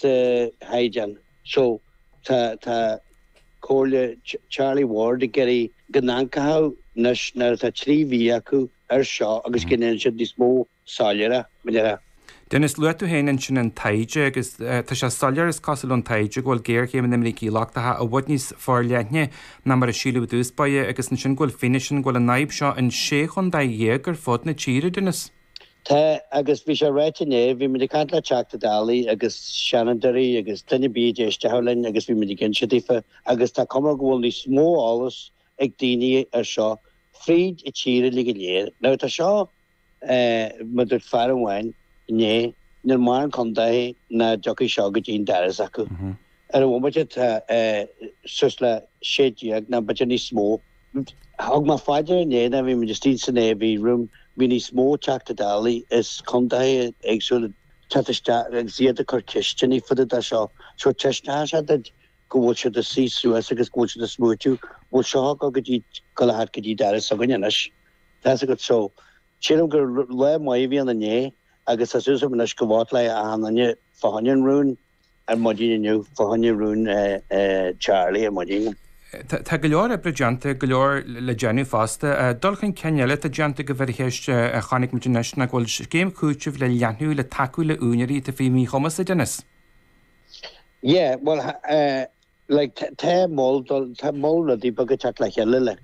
sa chaighdeán seo. Tá Comhairle Charlie Ward ag iarraidh go n-ancaitheadh nois nuair atá trí mhí acu air seo agus go ndéanann siad níos mó soiléire. Denis, luaigh tú féin ansin an taighde agus tá sé soiléir, is cosúil ón taighde, go bhfuil géarchéim na mbrící lochtacha i bhfad níos forleithne ná mar a síleadh i dtús báire agus ansin go bhfuil fianaise ann go bhfuil an fhadhb seo in sé chontae dhéag ar fud na tíre, Denis. Tá, agus bhí sé ráite inné, bhí muid ag caint le Teachta Dálaí agus Seanadóirí agus duine ar bith a d'éistfeadh linn agus bhí muid ag inse daofa agus tá cuma go bhfuil níos mó eolas ag daoine air seo fríd an tír uilig go léir. Now tá seo, eh, mar dúirt fear amháin inné, níl mórán contae nach dtiocfaidh seo go dtí an doras s'acu. Ar an bhomaite tá sé suas le sé déag, nó b'fhéidir níos mó. Thug mé fá dear inné nuair a bhí muid istigh san AV Room, bhí níos mó Teachta Dálaí as contaetha éagsúla ag teacht isteach agus iad ag cur ceisteanna fá dtaobh de seo. So taispeánann seo duit go bhfuil siad ag suí suas agus go bhfuil siad ag smaoitiú, bhuel seo ag gabháil go dtí, gabháil a theacht go dtí doras s'againne anois. Tá's agat. So sílim gur lá maith a bhí ann inné agus tá súil agam anois go vótálfaidh achan duine fá choinne an rún. ar maidin inniu fá choinne rún Charlie ar maidin. Tá go leor oibre déanta, go leor le déanamh fosta. Dul chun cinn eile atá déanta go Firacheis a chonaic muid anois ná go bhfuil scéim chúitimh le leathnú le tacú le úinéirí atá faoi mhíchumas, a Denis. Yeah, bhuel, like, tá moll, tá moll rudaí beaga ag teacht le chéile, like.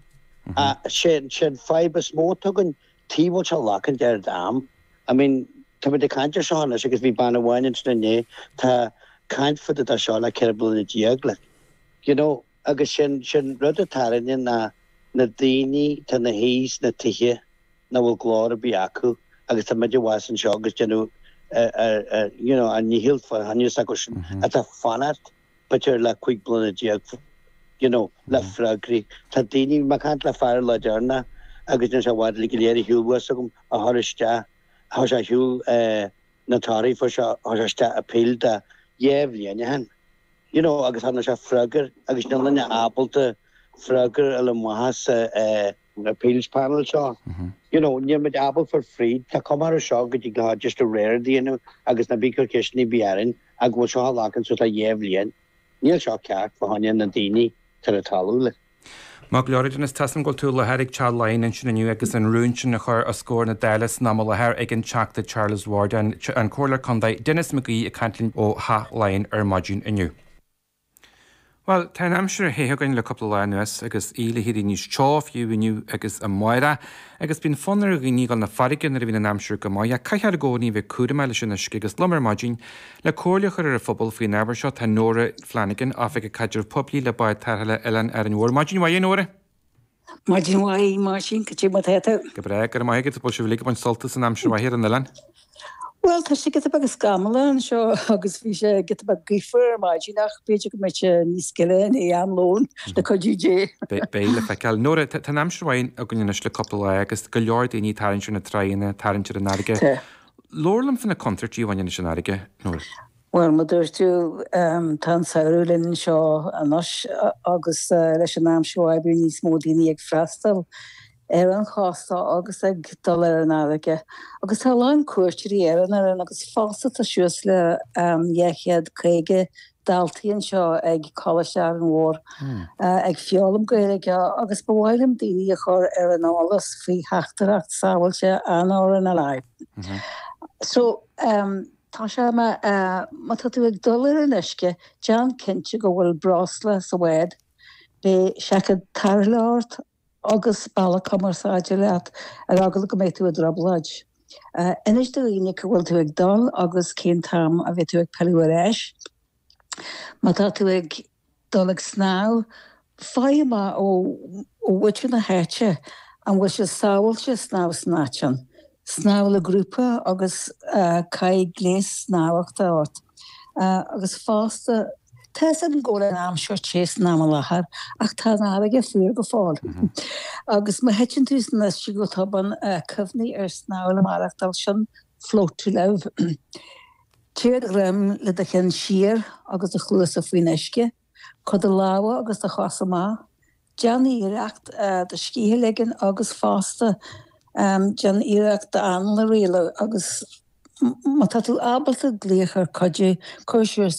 Ach sé an fadhb is mó atá againn, Tuige a bhfuil seo ag glacaint an oiread am? I mean, tá muid ag caint ar seo anois agus bhí bean amháin ansin inné, atá ag caint fá dtaobh de seo le ceithre bliana déag, like. You know? Agus sin, sin rud a tarraingíonn ná na daoine atá ina suí sna tithe nach bhfuil glór ar bith acu agus tá muid abhus anseo agus déanamh ar, ar, ar, you know, ár ndícheall fá choinne s'acu sin atá fanacht b'fhéidir le cúig bliana déag, you know, le freagraí. Tá daoine, mé ag caint le fear lá dár na, agus níl sé i bhfad uilig go léir ar shiúl bhus agam, a chuir isteach, chuir sé ar shiúl eh, na torthaí a fuair sé, chuir sé isteach appeal dhá bhliain ó shin, you know, agus thá na sé freagair agus níl éinne ábalta freagair a fháil amach as an, eh, an Appeals Panel seo. You know, níl muid ábalta fáil fríd, tá cuma air seo go dtí go raibh deis do réir a dhéanamh agus ná bí ag cur ceisteanna ar bith orainn, ach go bhfuil seo ag glacaint suas le dhá bhliain. Níl seo ceart, fá choinne na ndaoine atá ar an talamh, like. Maith go leor, a Denis, tá's agam go bhfuil tú i láthair ag Teach Laighean ansin inniu agus an rún sin á chur os comhair na Dála san am i láthair ag an Teachta Charles Ward, an Comhairleoir Contae Denis McGee ag caint linn ó Theach Laighean ar maidin inniu. Bhuel, tá an aimsir an-te againn le cúpla lá anuas agus í le bheith níos teo, fiú inniu agus amárach. Agus bíonn fonn ar dhaoine dul chun na farraige nuair a bhíonn an aimsir go maith, ach caithfear i gcónaí a bheith cúramach leis an uisce agus liom ar maidin le comhairle a chur ar an phobal faoin ábhar seo tá Nóra Flanagan, Oifigeach Caidrimh Poiblí le Bád Tarrthála Oileán Árainn Mhór. Maidin mhaith a Nóra! Maidin mhaith, a Mháirtín, cad é mar atá tú. Go breá, go raibh maith agat, bhfuil sibh uilig ag baint sult as an aimsir mhaith ar an oileán? Bhuel, tá sé giota beag scamallach anseo agus bhí sé giota beag gaofar ar maidin ach b'fhéidir go mbeidh sé níos gile in am lóin, le cuidiú Dé. Beidh le feiceáil. Nóra, tá an aimsir mhaith againn anois le cúpla lá agus go leor daoine ag tarraingt ar na tráigheanna, ag tarraingt ar an fharraige. Labhair liom faoi na contúirtí a bhaineann leis an fharraige, Nóra. Bhuel, mar a dúirt tú, tá an samhradh linn anseo anois agus leis an am seo bíonn níos mó daoine ag freastal ar an chósta agus ag dul ar an fharraige. Agus tá a lán cuairteoirí ar an Oileán agus fosta tá suas le 250 daltaí anseo ag Coláiste Árainn Mhór ag foghlaim Gaeilge agus ba mhaith liom daoine a chur ar an eolas faoi theachtaireacht sábháilte an RNLI. So. Tá sé mar, má tá tú ag dul ar an uisce, déan cinnte go bhfuil breosla sa bhád. Beidh seaicéad tarrthála ort agus bealach cumarsáide leat ar eagla go mbeidh tú i dtrioblóid. Inis do dhaoine cá bhfuil tú ag dul agus cén t-am a bheidh tú ag pilleadh ar ais. Má tá tú ag. dul ag snámh, faigh amach ó mhuintir na háite an bhfuil sé sábháilte snámh san áit sin, snámh le grúpa agus caith gléas snámhachta ort, agus fosta, tá's agam go bhfuil an aimsir te san am i láthair ach tá an fharraige fuar go fóill agus má thiteann tú san uisce go tobann, cuimhnigh ar snámh le maireachtáil, sin float to live. Téigh ar do dhroim le do cheann siar agus do chluasa faoin uisce. Cuir do lámha agus do chosa amach. Déan iarracht do scíth a ligean agus, fosta, déan iarracht d'anáil a rialú agus má tá tú ábalta glaoch ar cuidiú, cuir siar sa